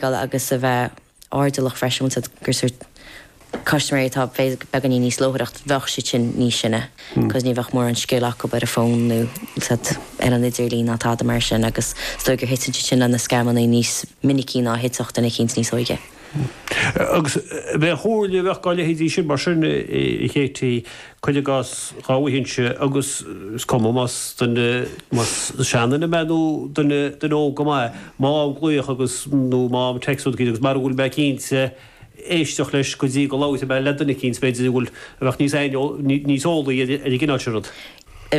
geall agus a bheith airdeallach freisin, bhfuil a fhios agat gur sórt custaiméirí atá beagáinín níos leochailí bheadh siad sin níos sine cos ní bheadh mórán scil acu ar an bhfón nó bhfuil a fhios agat ar an idirlíon ná tada mar sin agus is dóigh gur thiteann siad sin le na scamanna níos minicí ná a thitfeadh duine eicínt níos óige. Agus cén chomhairle a bheadh dhá leithéidí sin mar sin, Katie, cuir i gcás, dhá bhfaighinnse agus is cuma más duine seanduine mé nó duine óg go maith, má fhaighim glaoch agus, nó má fhaighim text rud eicínt agus mara bhfuil mé cinnte éisteacht leis go dtí go labhróidh mé le duine eicínt, b'fhéidir go bhfuil a bheadh níos níos eolaí ar an gcineál sin rud.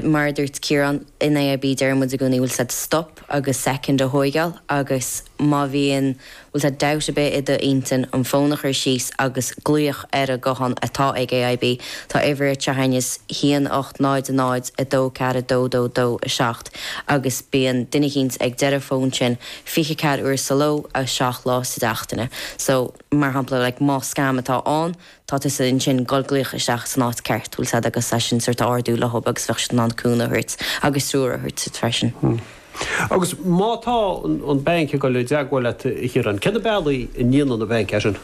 Mar a dúirt Ciarán, in AIB deireann muid i gcónaí bhfuil a fhios agat stop agus second a thóigeáil agus má bhíonn Bhfuil tá dabht ar bith i do intinn an fón a chur síos agus glaoch ar an guthán atá ag AIB, tá uimhir atá againn 1 800 24 22 27 agus bíonn duine eicínt ag deireadh an fón sin 24 uair sa ló agus 7 lá sa tseachtain. So, mar shampla, like, más scam atá ann, tá tusa ansin, ag goil ag glaoch isteach san áit ceart, bhfuil a fhios agat, é sin sórt a ardú leob agus bheadh siad in ann cúnamh a thabhairt agus treoir a thabhairt duit freisin. Hmm. Agus má tá an banc ag dul i dteagmháil leat a Chiaráin, cé na bealaí a ndéanann an banc é sin?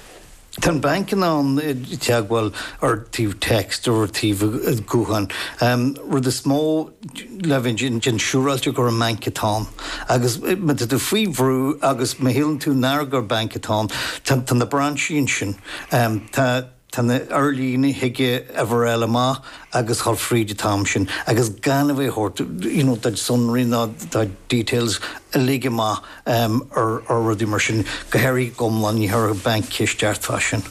Tá an banc in ann teagmháil ort taobh text or taobh gutháin. An rud is mó, le bheith déan siúráilte gur an banc atá ann. Agus má tá tú faoi bhrú agus má shíleann tú nár gur banc atá ann, tá na brainsí ansin, tá na ar líne, thig uimhir a fháil amach agus a ghoil fríd an t-am sin agus gan a bheith ag tabhairt you know do sonraí ná do details uilig amach ar rudaí mar sin, go háirithe go hiomlán, ní chuirfeadh banc ceist ort fá sin.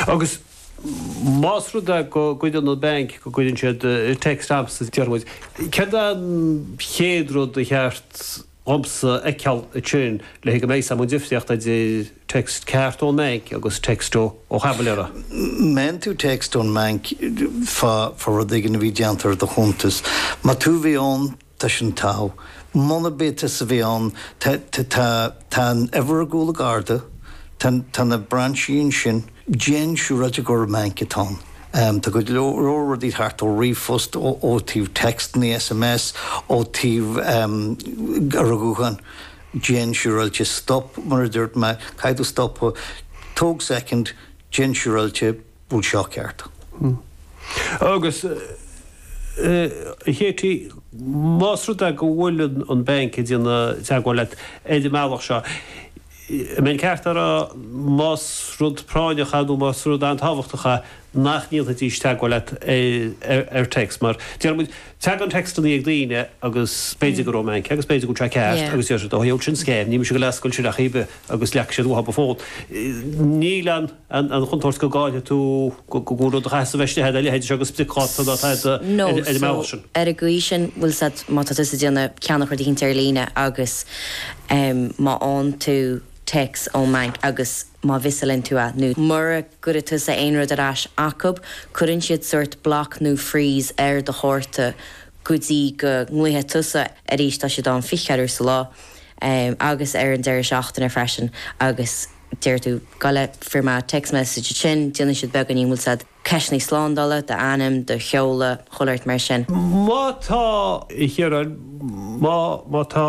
Agus. Más rud é go gcuireann an banc, go gcuireann siad text agamsa déarfaidh muid, céard é an chéad rud ba cheart dhomsa a fheiceáil ansin le haghaidh go mbeidh fhios agam an difríocht idir text ceart ón mbainc agus text ó chaimiléara? Má fhaigheann tú text ón mbainc fá rud éigin a bhí déanta ar do chuntas. Más tú a bhí ann, Tá sin togha. Munab é tusa a bhí ann, tá, tá, tá an uimhir ar chúl an chárta, tá, tá na brainsí ansin, déan siúráilte gurb é an banc atá ann. Tá go leor rudaí thart ó ríomhphost, ó, ó taobh téacsanna, SMS, ó taobh, em, ar guthán. Déan siúráilte stop, mar a dúirt mé, caithfidh tú stopadh, tóg soicind, déan siúráilte, bhfuil seo ceart. Agus, a Katie, más rud é go bhfuil an Banc ag déanamh teagmháil leat ar an mbealach seo, an mbeinn ceart a rá, más rud práinneach é nó más rud an-tábhachtach é, nach ndéanfaidís teagmháil leat ar text. Mar, déarfaidh muid, tagann tecstanna ag daoine agus b'fhéidir go raibh an Banc agus b'fhéidir go raibh sé ceart agus deir siad, ó, shíl siad sin scam, níl mise ag goil ag oscailt sin ar chor ar bith agus leag siad uathub an fón. Níl an. an chontúirt go gcaillfidh tú rud a chaithfeas a bheith istigh agat, a leithéid seo de spriocdháta má táthar ar an mbealach sin. Ar an gcaoi sin, bhfuil a fhios ad, má tá tusa ag déanamh ceannachán de shaghas eicínt ar líne agus má fhaigheann tú téacs ón mbanc agus má mhissálann tú é, nó mura gcuireann tusa aon rud ar ais acu, cuireann siad sórt block nó freeze ar do chárta go dtí go nglaofaidh tusa arís, tá siad ann fiche ceathair uair sa lá agus ar an deireadh seachtaine freisin agus. deir tú, go bhfuair mé text message, ansin déanann siad beagáinín, bhfuil a fhios ad, ceisteannaí slándála, do ainm, do sheoladh, chuile shórt mar sin. Má tá, a Chiaráin, má, má tá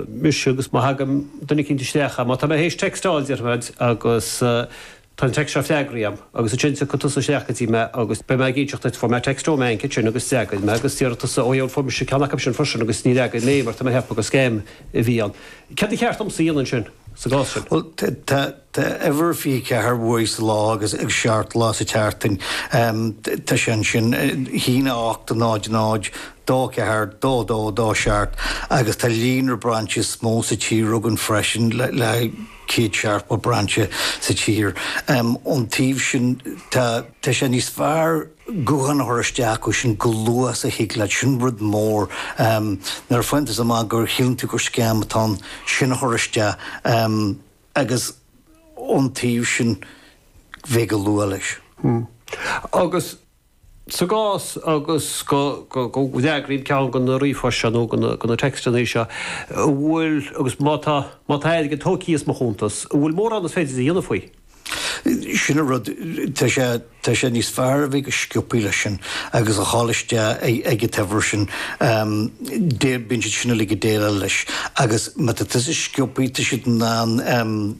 mise agus má thagann duine eicínt isteach ann, má tá mé théis textáil, déarfaidh mé duit, agus tá an text seo freagraithe agam, agus ansin tiocfaidh tusa isteach go dtí mé agus beidh mé ag inseacht duit, fuair mé text ón mbanc ansin agus d'fhreagair mé agus déarfaidh tusa, ó yeah, fuair mise ceann acub sin freisin agus níor fhreagair mé mar tá mé ag ceapadh gur scam a bhí ann. Céard ba cheart domsa a dhéanamh ansin? sa gcás sin. Bhuel, tá uimhir 24 uair sa lá agus seacht lá sa tseachtain. Tá sé ansin. A haon a hocht, náid, náid, dó ceathair, dó a dó, dó a seacht agus tá líonra brainsí is mó sa tír againn freisin le céad seachtó brainse sa tír. Ón taobh sin, tá sé níos fearr. glaoch a chur isteach acu sin chomh luath is a thig leat, sin rud mór. Nuair a fhaigheann tú amach go síleann tú gur scam atá ann, sin a chur isteach agus ón taobh sin bheith go luath leis. Agus sa gcás go bhfreagraím ceann de na ríomhphoist seo nó de na textannaí seo, an bhfuil, agus má tá, má tá airgead tógtha as mo chuntas, an bhfuil mórán is féidir a dhéanamh faoi? Sin an rud. Tá sé, tá sé níos fearr a bheith go sciobthaí leis sin agus calláil isteach ag an uimhir sin. Déan, bíonn siad sin uilig ag déileáil leis agus má tá tusa sciobthaí, tá siad in ann,